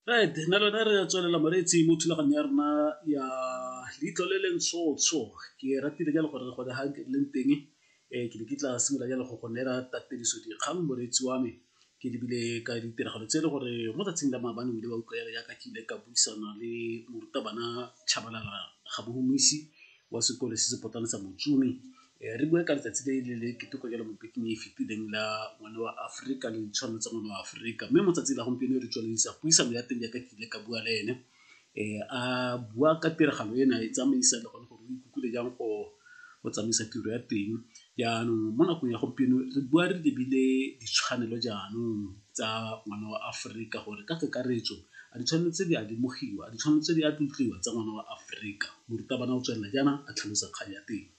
right nna lone re tswelela moreetsi mo thulaganyo ya rona ya leitlho le leng tshotsho ke ratile jalo gore gone ga ke leng teng um ke ne ke tla simolola jalo go go neela tatediso dikgang moreetsi wa me ke lebile ka ditiragalo tse e le gore mo tsatsing la maabane o ile wa utlwa yalo yaka ke ile ka buisana le morutabana chabalala ga bohumisi wa sekolo se se potlana sa motsumi Eh, re bua ka letsatsi le le le keteko jalo mo bekeng e e fetileng la ngwana wa aforika le ditshwanelo tsa ngwana wa aforika mme mo tsatsing la gompieno re tswelelisa puisano ya teng jaaka ke ile ka bua le ene um a bua ka tiragalo ena e tsamaisa le gone gore o ikutlwile jang go go tsamaisa tiro ya teng jaanong mo nakong ya gompieno re bua re lebile ditshwanelo jaanong tsa ngwana wa aforika gore ka kakaretso a ditshwanelo tse di a lemogiwa a ditshwanelo tse di a tlotliwa tsa ngwana wa aforika morutabana o tswelela jaana a tlhalosa kgang ya teng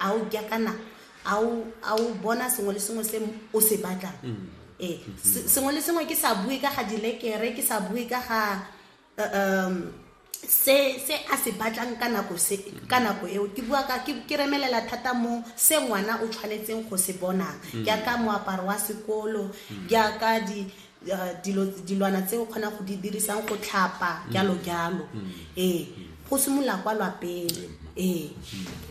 a o ke kana a o a o bona sengwe le sengwe se o se batlang mm. ee se- sengwe le sengwe ke sa bue ka ga dilekere ke sa bue ka ga uh, um, se se a se batlang ka nako se ka nako eo ke bua ka ke ke remelela thata mo se ngwana o tshwanetseng go se bonang jaaka moaparo wa sekolo jaaka di dilwana tse o kgonang go di dirisang go tlhapa jalo mm. jalo mm. ee go simolola kwa lwapeng ee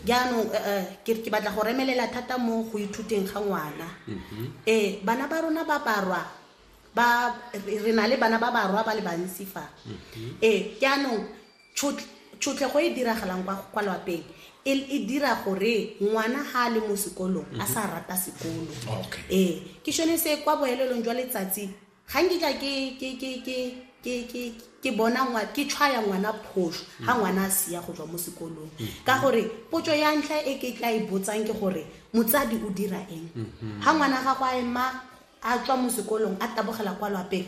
jaanong eh, eh, ke batla go remelela thata mo go ithuteng ga ngwana mm-hmm. ee bana ba rona ba barwa ba re na le bana ba barwa ba le bantsi fa mm-hmm. ee jaanong Tšhotlego e e diragalang kwa lwapeng e dira gore ngwana ga a le mo sekolong a sa rata sekolo ee ke sone se kwa boelelong jwa letsatsi ga nkitla ke bona ke tshwaya ngwana phoso ga ngwana a sia go tswa mo sekolong ka gore potso ya ntlha e ke tla e botsang ke gore motsadi o dira eng ga ngwana ga go a ema a tswa mo sekolong a tabogela kwa lwapeng